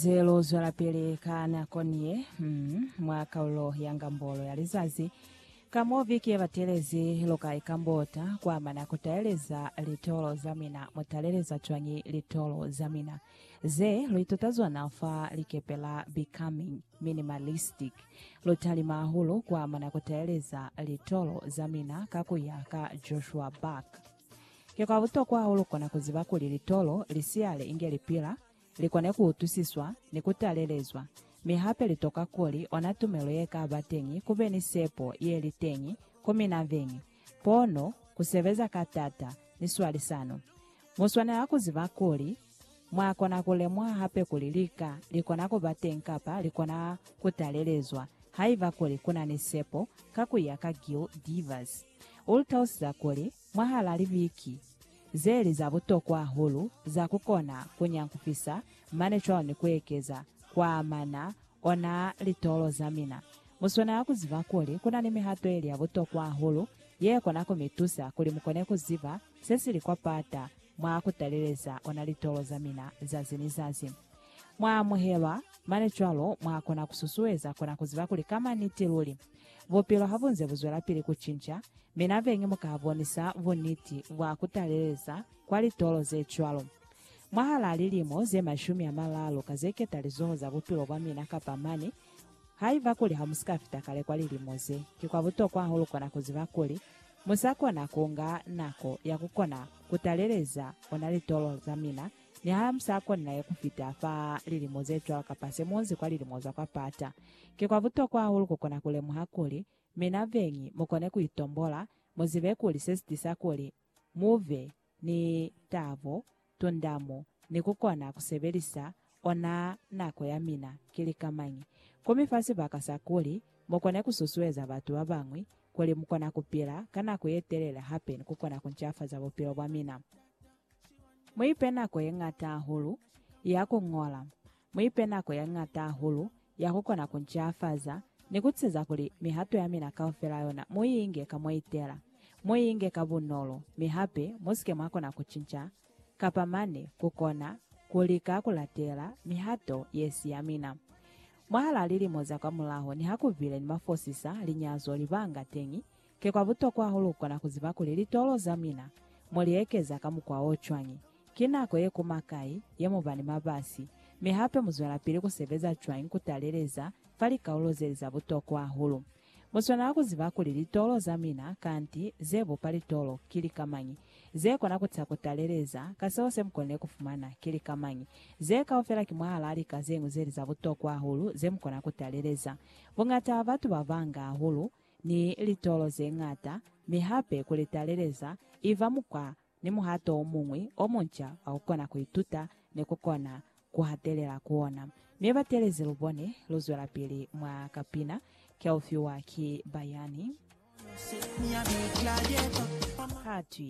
Ze lu zwelapili ka nako niye mm, mwa kaulo ya ngambolo ya lizazi, ka mo viki ye batelezi, lu ka ikambota kuamana ku taeleza litolo za mina. Mu taleleza cwañi litolo za mina? Ze lu ituta zona fa likepe la Becoming Minimalistic, lu talima hahulu kuamana ku taeleza litolo za mina ka ku ya ka Joshua Buck. Ki kwa butokwa hahulu kona ku ziba kuli litolo li siyale inge li pila, li kone ku utwisiswa ni ku talelezwa, mi hape li toka kuli ona tumelo ye ka ba teñi ku be ni sepo ye li teñi ku mina veñi, pono, ku sebeza ka t'ata, ni swalisano. Mu swanela ku ziba kuli mwa kona ku lemuha hape kuli lika li kona ku ba teñi kapa li kona ku talelezwa haiba kuli ku na ni sepo, ka ku ya ka Gil Devers. U lu talusiza kuli, Mwahal'a libiki zeli za butokwa hahulu za kukona kunyankufisa mane cwalo ni kuekeza kwaamana ona litolo zamina, muswanela kuziba kuli kuna ni mihato yeli ya butokwa hahulu yekona kumitusa kuli mukone kuziba sesili kwa pata mwa kutaleleza ona litolo zamina zazi ni zazi. Mwaamuhelwa, mane cwalo mwakona kususueza kona kuziba kuli kama niti luli, bupilo habunze buzwelapili kucinca, Mi na bengi mu ka bonisa buniti bwa ku taleleza kwa litolo ze cwalo. Mwahalaa lilimo ze mashumi a malaalu ka ze keta lizoho za bupilo bwa mina kapa mane, haiba kuli ha mu si ka fita kale kwa lilimo ze, ki kwa butokwa hahulu ku kona ku ziba kuli mu sa kona ku nga nako ya ku kona ku taleleza ona litolo za mina niha mu sa konile ku fita fa lilimo ze cwalo kapa se mu onzi kwa lilimo za kwa pata. Ki kwa butokwa hahulu ku kona ku lemuha kuli Mi na beñi mu kone ku itombola, mu zibe kuli se si tisa kuli mu be ni tabo, tundamu, ni ku kona ku sebelisa ona nako ya mina ki lika mañi. Ku mi fa sibaka sa kuli mu kone ku susueza batu ba bañwi kuli mu kona ku pila ka nako ye telele hape ni ku kona ku ncafaza bupilo bwa mina. Mu ipe nako ye ñata hahulu ya ku ñola. Mu ipe nako ya ñata hahulu ya ku kona ku ncafaza ni ku tiiseza kuli mihato ya mina kaufela yona mu i inge ka mwa itela. Mu i inge ka bunolo, mi hape mu si ke mwa kona ku cinca kapa mane ku kona ku lika ku latela mihato ye si ya mina. Mwahal'a lilimo za kwamulaho, niha ku bile ni mafosisa, linyazo, libanga teñi, Ki kwa butokwa hahulu kukona kuziba kuli litolo za mina mo li ekeza ka mukwa o cwañi, ki nako ye kuma kai ye mu ba ni mabasi, mi hape mu zwelapili ku sebeza cwañi ku taleleza fa likaulo ze li za butokwa hahulu. Mu swanela ku ziba kuli litolo za mina, kanti ze bupa litolo, ki lika mañi, ze kona ku taha ku taleleza ka seo se mu konile ku fumana, ki lika mañi. Ze kaufela ki mwahalaa lika ze ñwi ze li za butokwa hahulu ze mu kona ku taleleza. Buñata ha batu ba banga hahulu ni litolo ze ñata, mi hape ku li taleleza i ba mukwa ni muhato o muñwi o munca wa ku kona ku ituta ni ku kona ku hatelela ku ona. Mi batelezi lu bone lu zwelapili mwa kapina Ke U Fiwa Ki Bayani. Ha twi.